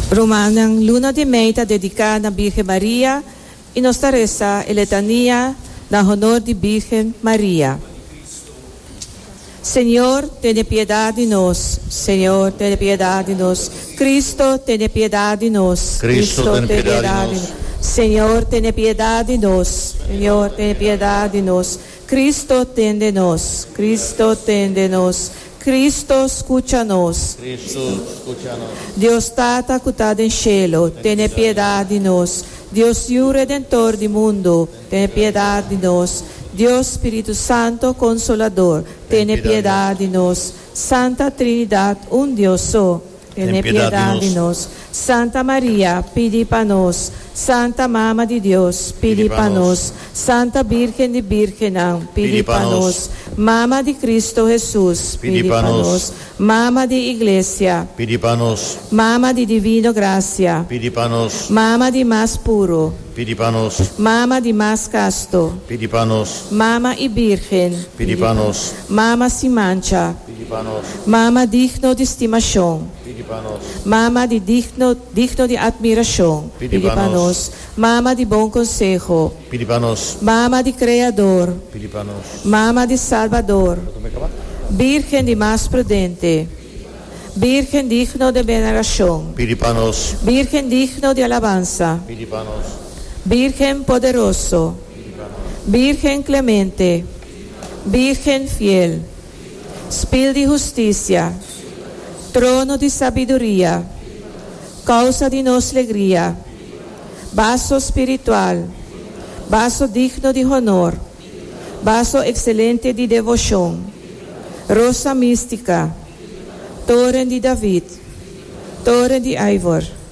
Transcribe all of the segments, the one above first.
Romannan, Luna di mei ta dediká na Bírgen Maria i nos ta resa e letania na honor di Bírgen Maria. Señor, tene piedad di nos. Señor, tene piedad di nos. Cristo, tene piedad di nos. Cristo, tene piedad di nos. Señor, tene piedad di nos. Señor, tene piedad di nos. Cristo tende nos, Cristo tende nos, Cristo scucha nos. Cristo scucha nos. Dios Tata cu ta den cielo, tene piedad di nos. Dios Yu Redentor di mundo, tene piedad di nos. Dios Spiritu Santo Consolador, tene piedad di nos. Santa Trinidad un Dios so, Tene piedad di nos. Santa Maria, pidi pa nos. Santa Mama di Dios, pidi pa nos. Santa Birgen di Birgennan, pidi pa nos. Mama di Cristo Hesus, pidi pa nos. Mama di Iglesia, pidi pa nos. Mama di Divino Gracia, pidi pa nos. Mama di Mas Puro, pidi pa nos. Mama di Mas Casto, pidi pa nos. Mama y Birgen, pidi pa nos. Mama sin mancha. Mama digno di stimashon Mama di digno digno di atmirashon Pidi pa nos Mama di bon konseho Pidi pa nos Mama di kreador Pidi pa nos Mama di salbador Birgen di mas prudente Birgen digno de venarashon Pidi pa nos Birgen digno di alabansa Pidi pa nos Birgen poderoso Pidi pa nos Birgen klemente Pidi pa nos Birgen fiel. Spil di husticia. Trono di sabiduria. Causa di nos legria. Baso spiritual. Baso digno di honor. Baso excelente di devocion. Rosa mistica. Toren di David. Toren di ivor.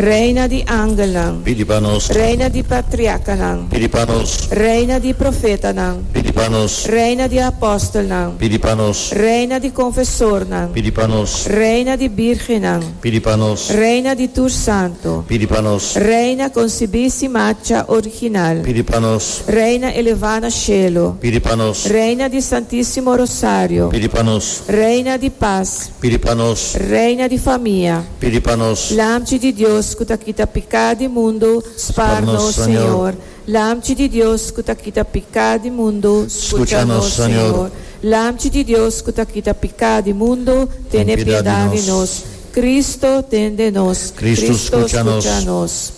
Reina di angelnan. Pidi pa nos. Reina di patriarcanan. Pidi pa nos. Reina di profetanan. Pidi pa nos. Reina di apostelnan. Pidi pa nos. Reina di confesornan. Pidi pa nos. Reina di birgennan. Pidi pa nos. Reina di tur santo. Pidi pa nos. Reina concibi si macha original. Pidi pa nos. Reina eleva na cielo. Pidi pa nos. Reina di Santisimo Rosario. Pidi pa nos. Reina di paz. Pidi pa nos. Reina di famia. Pidi pa nos. Lamchi di Dios ku ta kita piká di mundu, spar nos, Señor. Lamchi di Dios ku ta kita piká di mundu, skucha nos, Señor. Lamchi di Dios ku ta kita piká di mundu, tene piedad di nos. Kristu, tende nos. Kristu, skucha nos.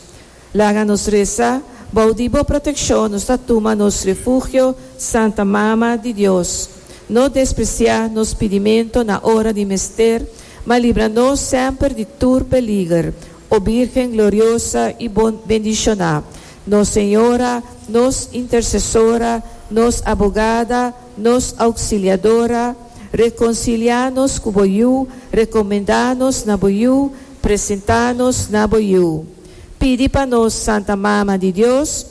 Laga nos resa, Bou di Bo protekshon nos ta tuma nos refugio, Santa Mama di Dios. No despresiá nos pidimentu na ora di mester, ma libra nos semper di tur peliger, O Bírgen gloriosa i bendishoná, nos Señora, nos Intersesora, nos Abogada, nos Ouksiliadora, rekonsiliá nos ku Bo Yu, rekomendá nos na Bo Yu, presentá nos na Bo Yu. Pidi pa nos Santa Mama di Dios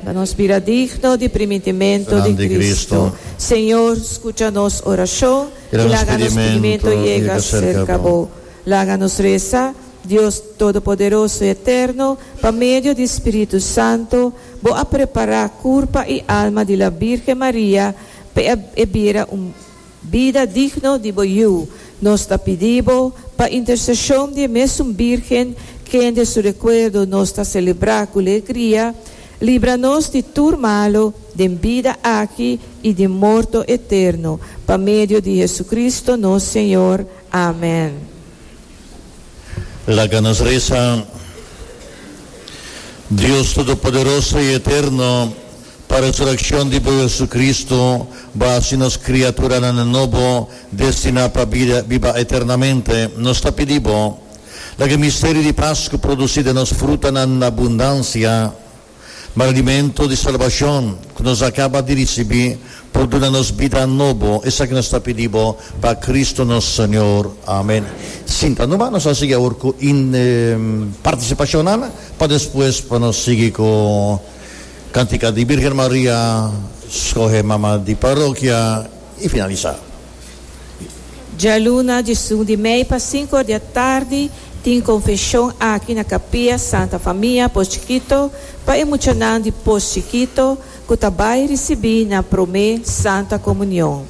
pa nos bira digno di primintimento di Cristo. Señor, scucha nos oracion y laga nos pidimento yega cerca bo. Laga nos reza, Dios Todopoderoso y Eterno, pa medio di Spiritu Santo bo a prepara curpa y alma di la Birgen Maria pa e bira un Bida digno di bo Yu, nos ta pidi bo, pa interseshon di e mesun Bírgen, kende su rekuerdo nos ta selebrá ku legria, libra nos di tur malu, den bida aki i di morto eterno, pa medio di Hesukristu nos Señor. Amen. Laga nos resa. Dios Todopoderoso i Eterno. Pa resurekshon di bo JesuCristu, bo a hasi nos kriaturanan nobo, destiná pa bida biba eternamente. Nos ta pidi bo, laga e misterio di Pasku produsí den nos frutanan na abundansia. Ma rendimentu di salbashon ku nos a kaba di risibí por duna nos bida nobo. Esaki nos ta pidi bo pa Kristu nos Señor. Amen. Sinta noba, nos a sigui awor ku partisipashonnan pa despues pa nos sigui ku. Cantica di Birgen Maria, Scoge Mama di Parokia y finalisa. Djaluna di Sundi mei pa sinku or di atardi tin konfeshon aki na Kapia Santa Famia Posh Chikito pa e muchanan di Posh Chikito ku ta bai risibí nan promé Santa Komunion.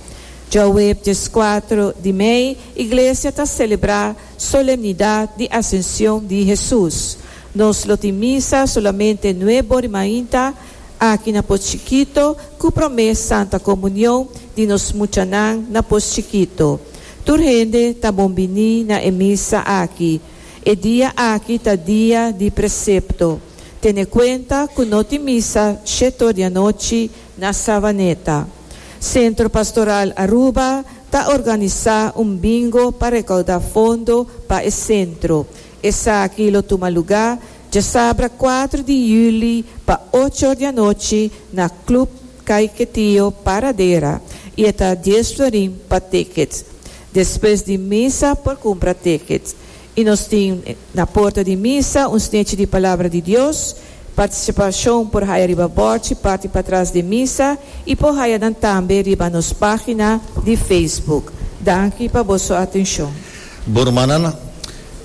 Djouweb dies kuatro di mei iglesia ta selebrá Solemnidad di Ascension di Hesus. Nos lo tin misa solamente nue bori mainta, aki na pos chikito, cu prome Santa Comunion di nos muchanan na pos chikito. Tur hende ta bon bini na e misa aki. E dia aki ta dia di precepto. Tene cuenta cu no tin misa shetor di anochi Na Savaneta, Centro Pastoral Aruba ta organisa un bingo pa recauda fondo pa e centro. Esaki lo tuma luga djasabra cuatro di juli pa ocho or di anochi na Club Kay Ketio Paradera y e ta dies florin pa tickets. Despues di misa por cumpra tickets. I nos tin na porta di misa un snechi di Palabra di Dios. Participacion por haya riba bordchi parti patras den misa i por haya nan tambe riba nos pagina di Facebook. Danki pa boso atencion. Bo rumannan,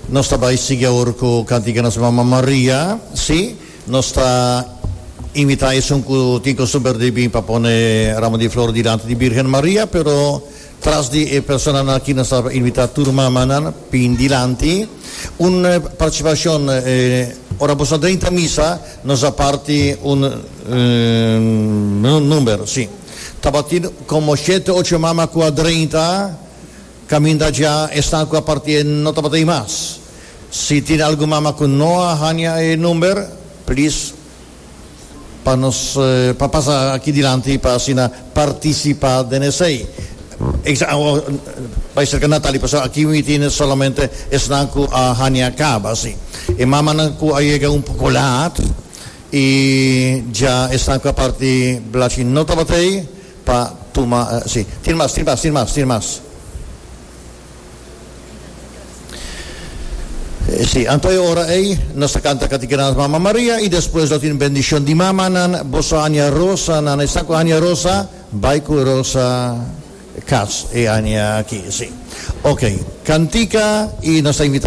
nos ta bai sigui awor cu cantica nos Mama Maria. Si, nos ta invita esun cu tin costumber di bin pa pone ramo di flor dilanti di Birgen Maria, pero. Tras di e personanan aki nos a invita tur mamanan bin dilanti. Un participacion ora boso a drinta misa nos a parti un number, si. Tabatin como shete ocho mama cu a drinta caminda dja esnan cu a parti e no tabata ahí mas. Si tin algun mama cu no a hanja e number please. pa nos pa pasa aki dilanti pa asina participa den esey bay cerca Natali pasobra aki mi tine solamente esnan cu a hania caba si e mamanan cu a yega un poco laat y dja esnan cu a parti blachi no tabatin pa tuma si tin mas tin mas tin mas tin mas. Sí, anto e ora ei nos ta canta Cati Gran es Mama Maria y despues lo tin bendicion di mamanan, bo so aña Rosa nan, esnan cu aña Rosa, bay cu Rosa cas e aña aki, sí. Ok, cantica y nos ta invita.